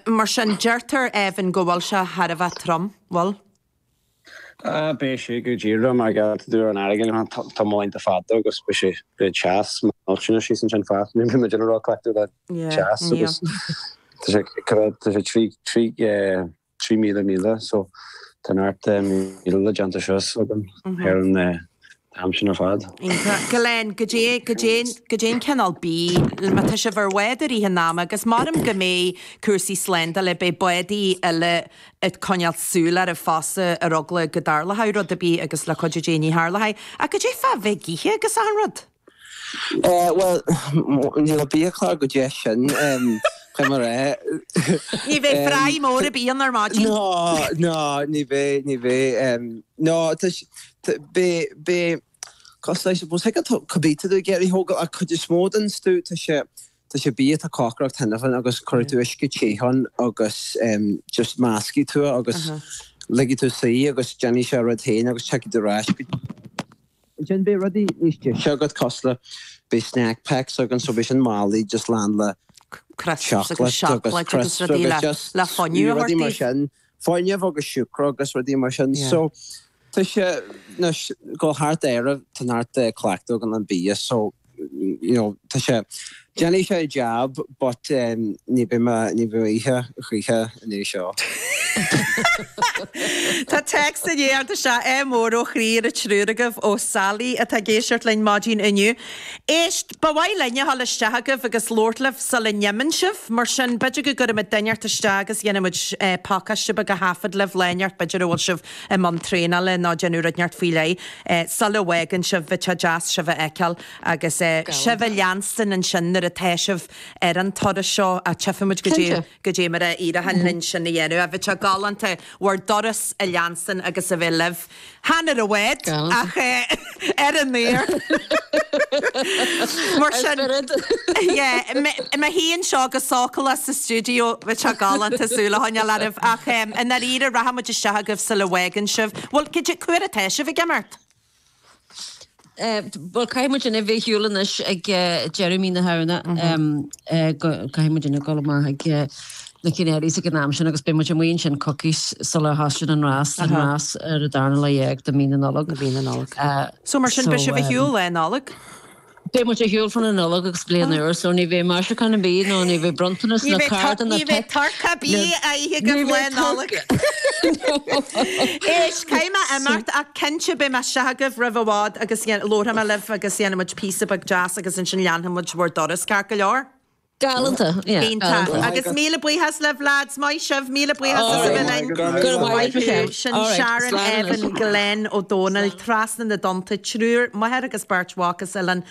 Mar sin, deirtear fiú amháin go bhfuil sé chóir a bheith trom, bhuel? Ah, beidh sé go díreach mar gheall an fharraige leo an tiomáint ar fad agus beidh sé go deas millteanach síos ansin fosta. Níl muid róchleachta le teas agus tá sé tá sé trí trí trí míle míle so tá neart míle le déanamh so ag an Aimsir ar fad. Iontach. Go lean. Goidé, goidé, goidé an cineál bia má tá sibh ar an bhád d'oíche an t-am agus measaim go mbeidh cúrsaí slándála, beidh bádaí eile ag coinneáil súil oraibh fosta ar eagla go dtarlóidh rud ar bith agus le cuidiú Dé ní tharlóidh. Ach goidé fá bheith ag ithe agus achan rud? Eh, bhuel, níl an bia cineál goidé sin, chomh mar é. Ní bheidh fry mór ar bith ann ar maidin. Ná, ná, ní bheidh, ní bheidh. Nó, tá, Beidh sé cosúil le, I suppose cupla bia te a thógáil ach an chuid is mó den stuif tá sé tá sé bia atá cócaráilte cheana féin agus cuirfidh tú uisce te ann agus just meascfaidh tú é agus ligfidh tú dó suí agus déanfaidh sé a rud féin agus tiocfaidh tú ar ais go dtí ansin beidh rudaí níos deise agat cosúil le beidh snack packs againn so beidh sin mallaií just lán le crisps agus seacláid agus crisps agus just le fuinneamh a thabhairt daoibh. fuinneamh agus siúcra agus rudaí mar sin. So tá sé, anois, ag gabháil thart Éirinn, tá neart cleachtadh againn ar an bia, so, you know, tá sé, déanfaidh sé a jab, but ní bheidh mé, ní bheidh ag ithe choíche ina dhiaidh seo. Tá text i ndiaidh teacht anseo, ádh mór ó chroí ar an triúr agaibh ó Sally atá ag éisteacht linn ar maidin inniu. Éist! Ba mhaith linn a ghabháil isteach chugaibh agus labhairt libh sula n-imíonn sibh, mar sin b'fhéidir go gcuirfimid duine inteacht isteach agus dhéanfaidh muid pacáiste beag a thaifeadadh libh lá inteacht b'fhéidir a bhfuil sibh i mbun traenála nó ag déanamh rud inteacht faoi leith sula bhfágann sibh, bheadh sé deas sibh a fheiceáil agus sibh a leanstan ansin nuair atá sibh ar an turas seo ach tífimid goidé. Cinnte. Goidé mar a éireochaidh linn sin a dhéanamh, ach bheadh sé galánta, bhur dturas a leanstan agus a bheith libh. Chan ar an bhád, ach ar an aer! Mar sin, yeah, mé féin anseo go sócúlach sa stiúideo, bheadh sé galánta, súil a choinneáil oraibh, ach i ndáiríre, rachaidh muid isteach chugaibh sula bhfágann sibh. Bhuel, goidé, cá huair atá sibh ag imeacht? Bhuel caithfidh muidinne a bheith ar shiúl anois ag deireadh mí na Samhna caithfidh muidinne a dhul amach ag na Canaries ag an am sin agus beidh muid amuigh ansin coicís sula dtosaíonn an rás, an rás ar an darna lá déag de mhí na Nollag. So mar sin beidh sibh ar shiúl Lá Nollag? Beidh muid ar shiúl fán Nollaig agus bliain úr, so ní bheidh maisiúcháin ar bith ná ní bheidh bronntanas ná cártaí ná pioc. Ní bheidh turcaí ar bith le hithe agaibh Lá Nollag. Éist, caithfidh mé imeacht ach cinnte beidh mé istigh agaibh roimh i bhfad agus labharfaidh mé libh agus dhéanfaidh muid píosa beag deas agus ansin leanfaidh muid bhur dturas ceart go leor? Galanta, yeah. Iontach. Agus míle buíochas libh lads, maith sibh, míle buíochas as a bheith linn. Go raibh maith agat. Sin Sharon, Evan, Glenn, Ó Dónaill, trasna na dtonnta, triúr, máthair agus beirt mhac as Oileán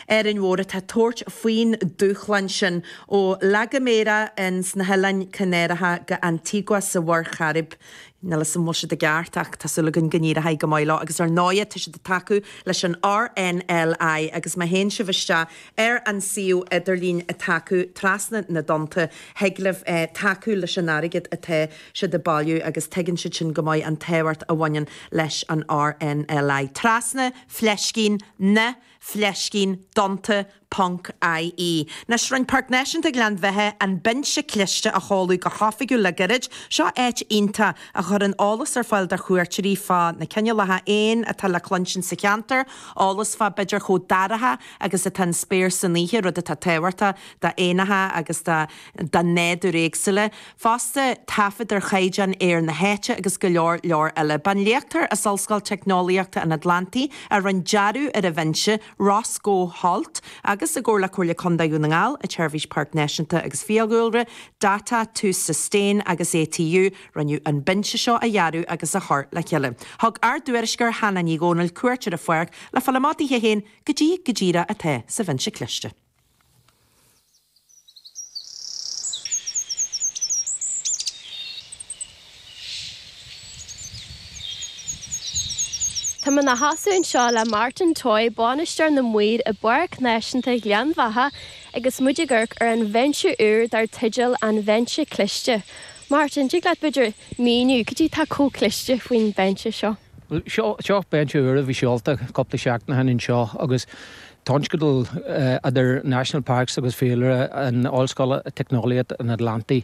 Árainn Mhór atá ag tabhairt faoin dúshlán sin, ó La Gomera ins na hOileáin Chanáracha go Antigua sa Mhuir Chairib. Níl 'fhios a'm an bhfuil siad i gceart ach tá súil againn go n-éireoidh go maith leo agus ar ndóighe tá siad ag tacú leis an RNLI agus má théann sibh isteach Ar an suíomh idirlín atá acu Trasna na dTonnta thig libh tacú leis an airgead atá siad ag bailiú agus tuigeann siad sin go maith an tábhacht a bhaineann leis an RNLI. Trasna fleiscín na fleiscín dtonnta ponc IE Anois rinne Páirc Náisiúnta Ghleann Bheatha an binse cliste a sheoladh go hoifigiúil le gairid. Seo áit iontach a chuireann eolas ar fáil do chuairteoirí fá na cineálacha éan atá le cluinstin sa cheantar, eolas fá b'fhéidir chomh dorcha agus atá an spéir san oíche, rud atá tábhachtach do éanacha agus do nádúir éagsúla. Fosta, taifead ar chaighdeán aeir na háite agus go leor leor eile. Ba é an léachtóir as Ollscoil Teicneolaíochta an Atlantaigh a rinne dearadh ar an bhinse, Roscoe Holt, agus i gcomhar le Comhairle Contae Dhún na nGall, an tSeirbhís Páirc Náisiúnta agus Fiadhúlra, Data to Sustain agus ATU, rinneadh an binse seo a dhearadh agus a chur le chéile. Thug ár dtuairisceoir Hannah Ní Dhomhnaill cuairt ar an pháirc le fáil amach di féin, cad é go díreach atá sa bhinse cliste. Tá mé i mo sheasamh anseo le Martin Toye, bainisteoir na maoir i bPáirc Náisiúnta Ghleann Bheatha agus muid ag amharc ar an bhinse úr dar teideal 'An Bhinse Cliste'. Martin, tig leat b'fhéidir, Míniú cad é atá chomh cliste faoin bhinse seo. Seo binse úr a bhí seolta cúpla seachtain ó shin anseo agus tionscadal idir National Parks agus Fiadhúlra an Ollscoile Teicneolaíocht an Atlantaigh,